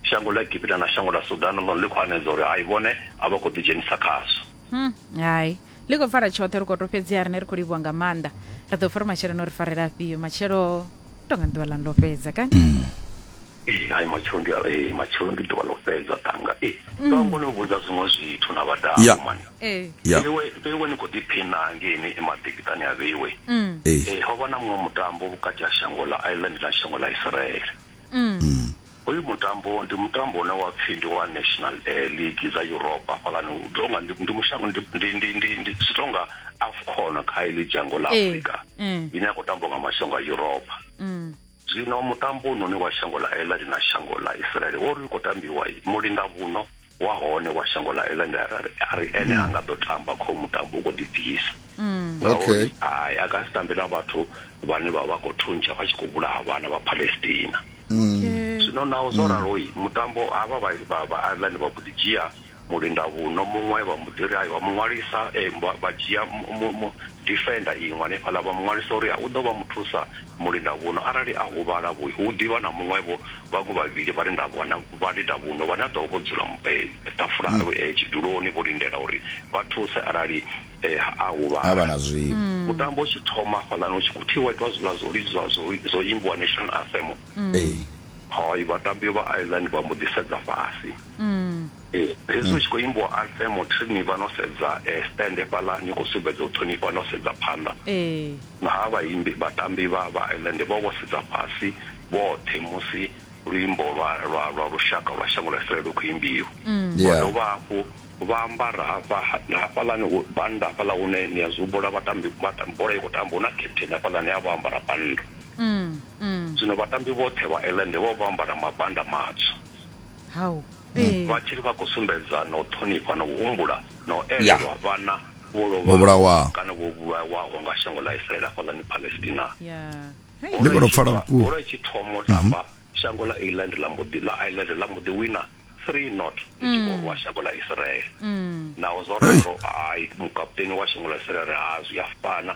Shango ḽa Egipita na shango ḽa Sudan ḽone ḽi khou hanedza uri hai vhone a vha khou ḓidzhenisa khazwo. Hmm, hai. Ḽi khou fara tshoṱhe ri khou to fhedziha rine ri khou livhuwa nga maanḓa. Ri ḓo pfa uri matshelo no ri farela afhio. Matshelo tonga ḓuvha ḽa ndo fhedza kani. Mm. Ee, hai matshelo ndi ee, matshelo ndi ḓuvha ḽo fhedza ṱanga. Ee, mm. ndo ngo no vhudza zwiṅwe zwithu na vhadau yeah. mani. Ee. Yeah. Vheiwe, vheiwe ni khou ḓiphina ngeini emaḓikiṱani a vheiwe. Mm. Ee, ho vha na muṅwe mutambo vhukati ha shango ḽa Ireland na shango ḽa Israel. Hoyu mutambo ndi mutambo une wa pfhi ndi wa national eh, league dza europa hafhaḽani u tonga ndi ndi mushango ndi ndi ndi ndi ndi zwi tonga afcon kha iḽi dzhango ḽa Ee, afrika ee. ine ya khou tambwa nga mashango a europa zwino mutambo une wa shango ḽa ela ḽi na shango ḽa israele wo ri u khou tambiwa mulingavhuno wa hone wa shango ḽa ene a ri ene ha nga ḓo tamba kho mutambo u khou ḓibvisa mm. ngauri hai a ka si tambe na vhathu vhane vha vha khou thuntsha vha tshi khou vhulaha vhana vha palestina mm. zwino naho zwo mm. raloi mutambo havha vha ireland vha mbo ḓi dzhia mulinda vhuno muṅwe vha mbo ḓi ri ayo vha muṅwalisa eh, vha dzhia defender iṅwe hanefhaḽa vha muṅwalisa uri u ḓo vha muthusa Mulindavhuno arali a huvhala, vho, hu ḓi vha na muṅwe-vho vhaṅwe vhavhili vhalindavhana, vhalindavhuno vhane a ḓo vha vho dzula ṱafula, tshiduloni, vho lindela uri vha thuse arali ha, a Ha vha huvhala. na zwiṅwe. Mutambo u tshi thoma hafhaḽani, hu tshi khou thivhiwa itwa zwiḽa zwo lidzwa, zwo, zwo imbiwa National Anthem. Ee. Hai, vhatambi vha Ireland vha mbo ḓi sedza fhasi. Hezwi hu tshi khou imbiwa Anthem, Trini vha no sedza stand hafhaḽa, ni khou sumbedza u ṱhonifha no sedza phanḓa. Ee. Naa vhaimbi, vhatambi vha vhaelende vho vho sedza fhasi vhoṱhe musi luimbo lwa lwa lwa lushaka lwa shango ḽa Israele lu khou imbiwa? Vha Yeah. dovha hafhu vha ambara hafha na hafhaḽani hu bannda hafhaḽa hune ni a zwi humbula vhatambi vha ta, bola i khou tambiwa hu na captain hafhaḽani a vha o ambara bannda. Zwino vhatambi vhoṱhe vhaelende vho vha vho ambara mabannda matswu. Hau. Ee. Vha tshiri vha khou sumbedza na u ṱhonifha na u humbula na u elelwa vhana vho lovhaho kana vho vhulawaho nga shango ḽa Israele hafhaḽani Palestina. Bola i tshi thoma u tamba, shango ḽa Ireland ḽa mbo ḓi ḽa Ireland ḽa mbo ḓi wina three not ḽi tshi khou rwa shango ḽa Israele. Naho zwo ralo, hai, mukaputeni wa shango ḽa Israele a ri, Zwi a fana.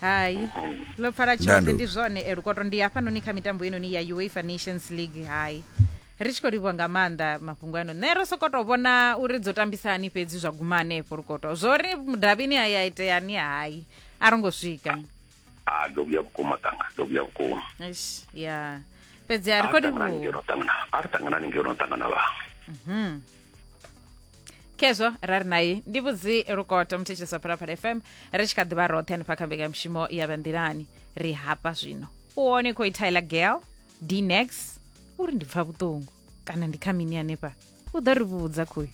hai ḽo pfala tshoṱhe Ndandu. ndi zwone eh, lukoto ndi hafhanoni kha mitambo inoni ya uefa nations league hai ri tshi khou livhuwa nga maanḓa mafhungo ano nṋe ro sokou tou vhona uri dzo tambisa hani fhedzi zwa guma hanefho lukoto zwo ri mudavhini a ya iteani hai a ro ngo swika a ndo vhuya vhukuma tanga ndo vhuya vhukuma Eish, ya fhedzi a ri khou ṱanganani livhuwa ngeno ṱangana a ri ṱanganani ngeno ṱangana vhaṅwe khezwo ra ri naye ndi vhudzi lukoto muthetshelesa phalaphala fm ri tshi kha ḓi vha roṱhe hanefha kha mbekanyamushumo ya vhanḓilani ri hafha zwino u hone khou ithaila gel dnex uri ndi pfa vhuṱungu kana ndi kha mini hanefha u ḓo ri vhudza khoyu